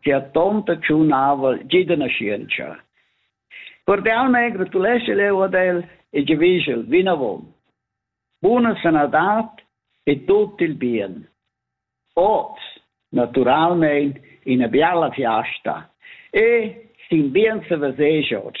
che ha tonta tschun aval giu da naschientscha. Cordial mei gratuleschel eu ad el e giavischel vinavon. Buna sanadat e tut il bien. Oz, naturalmein, ina biala fiasta e sin bien se vesesch oz.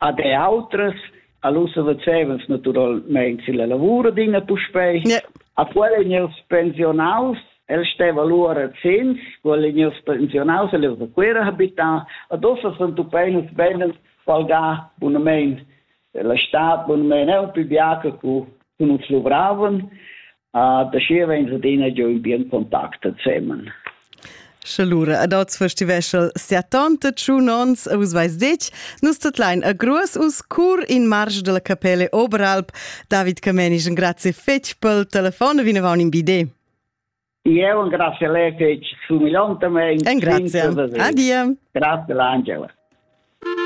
Ad e outras, all'ussa facevans natüralmein silla lavur adina puspei. Yeah. A quella in ils pensionaus, el steva lura zins, quella in ils pensionaus, el era quera habitar, ad ossa sun tu peinas benen palgà bunamein la stad bunamein è un più biaca cu uns luvravan Uh, da schi avein adina giu in bien contact ensemen. Sche lura ad oz festivesel siatanta tschun ons a us vais dec, nus tutlein a gruas us cur in marsch della capelle Oberalp. David Camenisch, un grazie fetg pel telefon, vinavon in bide. Io un grazie lei fetg sumilantamente. Un grazie. Adia. Grazie Angela.